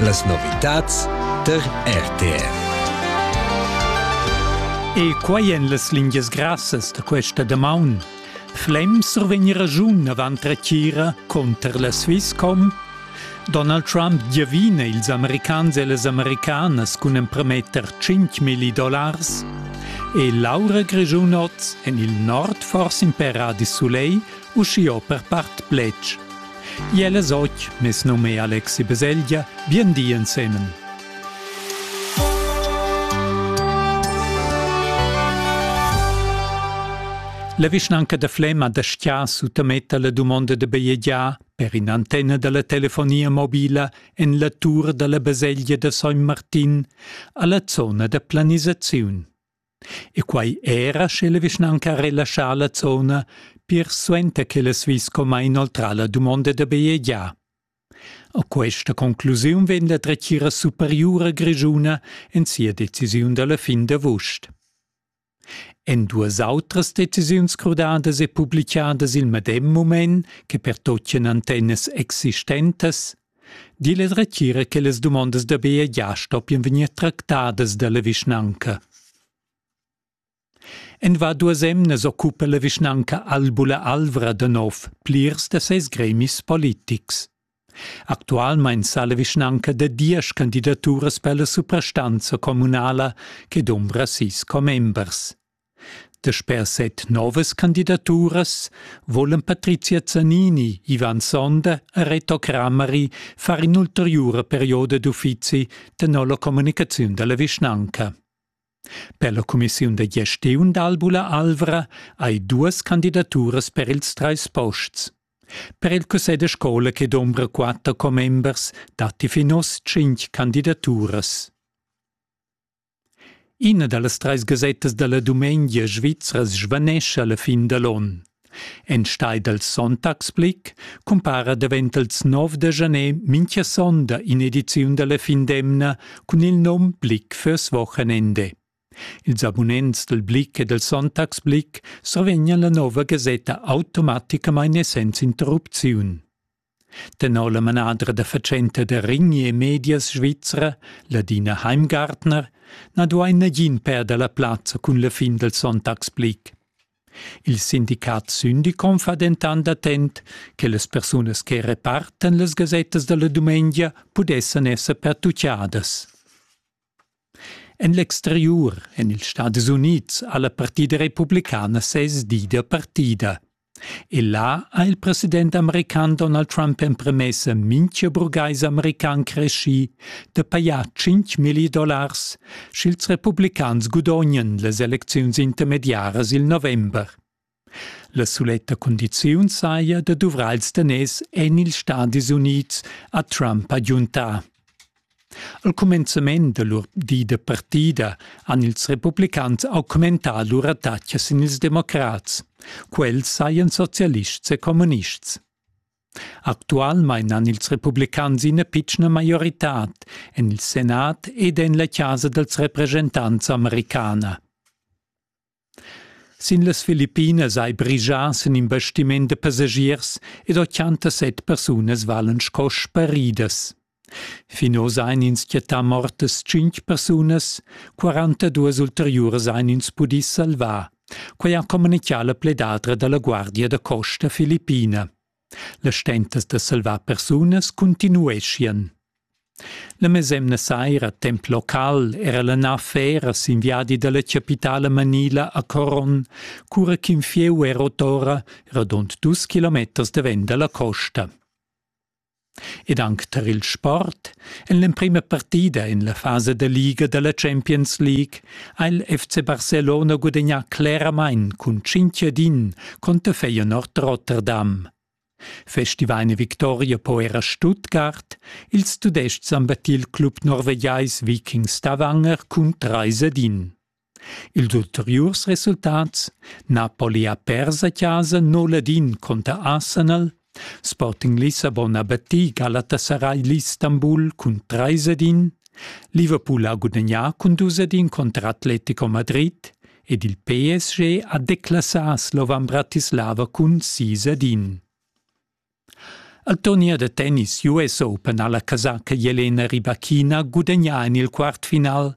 Las novitads tar RTR. E quai en las lingias grassas da questa damaun. Flem survegni ragiun avant retira conter la Swisscom? Donald Trump giavina ils americans e las americanas cun emprometter 5.000 dollars? E Laura Grigiunoz en il nord forse in per di soleil Uschiò per part pletg. Iel es och, mes num è Alexi Beselgia, bien di ensemen. La vischnanca da Flema da Stia suttametta la dumonda da bajegiar per in antenna dalla telefonia mobila en la tur dalla baselgia da San Martin alla zona da planisaziun. E quai era sche la vischnanca relaschà la zona pir suenter ch'el ha vis comma inoltrà la dumonda da bajegiar. A questa conclusiun vegn la dretgira superiura grischuna en sia decisiun da la fin d'avust. En duas autras decisiuns crudadas e publicadas il medem mument che pertoccan antennas existentas Dil es retira che las dumondas da Bea gia stoppian vegnir tractadas dalla vischnanca. En va duas emnas occupa la vischnanca Albula Alvra da nov plirs da ses gremis politics. Actualmein sa la vischnanca da diesch candidaturas per la suprastanza communala che dumbra sis commembers. Dasper set novas candidaturas volan Patrizia Zanini, Ivan Sonder e Reto Crameri far in'ulteriura perioda d'uffizi tenor la communicaziun dalla vischnanca. Per la cumissiun da gestiun d'Albula Alvra hai duas candidaturas per ils treis posts. Per il cussegl da scola che dombra quatter commembers datti fin oz tschintg candidaturas. Ina da las trais gasettas da la dumengia svizra svanescha la fin da l'onn. Enstagl dal Sonntagsblick cumpara davent ils nov da janer mintga sonda in'ediziun da la fin d'emna cun il nom Blick fürs Wochenende. Ils abunents dal Blick e dal Sonntagsblick survegnan la nova gasetta automaticamain essens interrupziun. Tenor la manadra da fatschenta da Rini e Medias svizra, Ladina Heimgartner, na duain nagin perder la plazza cun la fin dal sonntagsblick. Il sindicat Syndicom fa dentant attent che las persunas che repartan las gasettas da la dumengia pudessan esser pertutgadas. En l'exteriur, en ils Stadis Unids, ha la partida republicana sez di da partida. E là ha il president american Donald Trump empremessa mintga burgais american creschì da pajar 5 milli dollars, sch'ils republicans gudognan las elecziuns intermediaras il november. La suletta cundiziun saja da duvrar ils daners en ils Stadis Unids, ha Trump agiuntà. Al cumenzament da lur di da partida han ils republicans augmentà lur attacca sin ils democrats. Quels sajan socialists e communists. Actualmain han ils republicans ina pitschna maioritad en il Senat ed en la chasa dals represchentants americana. Sin las Filippinas hai brigias en in bastiment da passagiers ed ochantasset persunas valen sco sparidas. Fin oz ein ins chattà mortas tschintg persunas, 42 ulteriuras ein ins pudì salvar. Quei ha communicà la pledadra dalla Guardia da costa filippina. Las stentas da salvar persunas continueschian. La mesemna saira temp local era la nav fera sin viadi dalla capitala manila a Coron, cura ch'in fieu era otora radund dus kilometers davent dalla costa. Ed anc tar il sport, en l'emprima partida en la fasa da liga dalla Champions League, Ha il FC Barcelona gudegnà cleramain cun Cinchedin conter Feyenoord Rotterdam. Festivaina victoria po era Stuttgart, ils Tudestgs han battit il club norvegiais Viking Stavanger cun 3 edin. Ils ulteriurs resultats Napoli ha pers a casa 0 edin conter Arsenal Sporting Lissabon ha battì Galatasaray l'Istanbul cun trais ed in, Liverpool ha gudagnà cun dus ed in contra Atletico Madrid ed il PSG ha declassà Slovan Bratislava cun sis ed in. Al turnier da tennis US Open ha la casaca Jelena Rybakina gudagnà en il quartfinal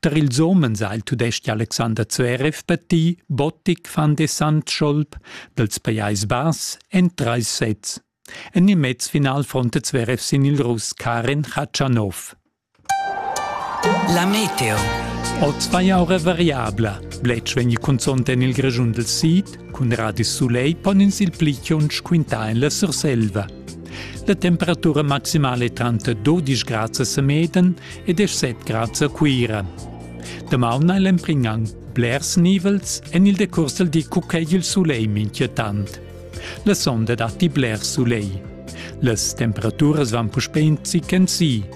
Tar ils homens ha il tudestg Alexander Zverev battì Botic van de Sandscholp dals Pajais Bass en trais sets. En il mezfinal fronta Zverev sin il Russ Karen Khachanov. La meteo. Oz vai aura variabla. Bletsch vegn cunzont en il Grischun del Sid, cun radis sulegl pon ins il pli tschunsch quintar en la Surselva. La temperatura maximale tranter 12 grads a Semeden ed 7 grads a Cuira. Damaun ha l'empringan blers nivels en il decurs del di cucei il soleil minchietant. La sonda datti bler soleil. Las temperaturas van puspè in zic en si,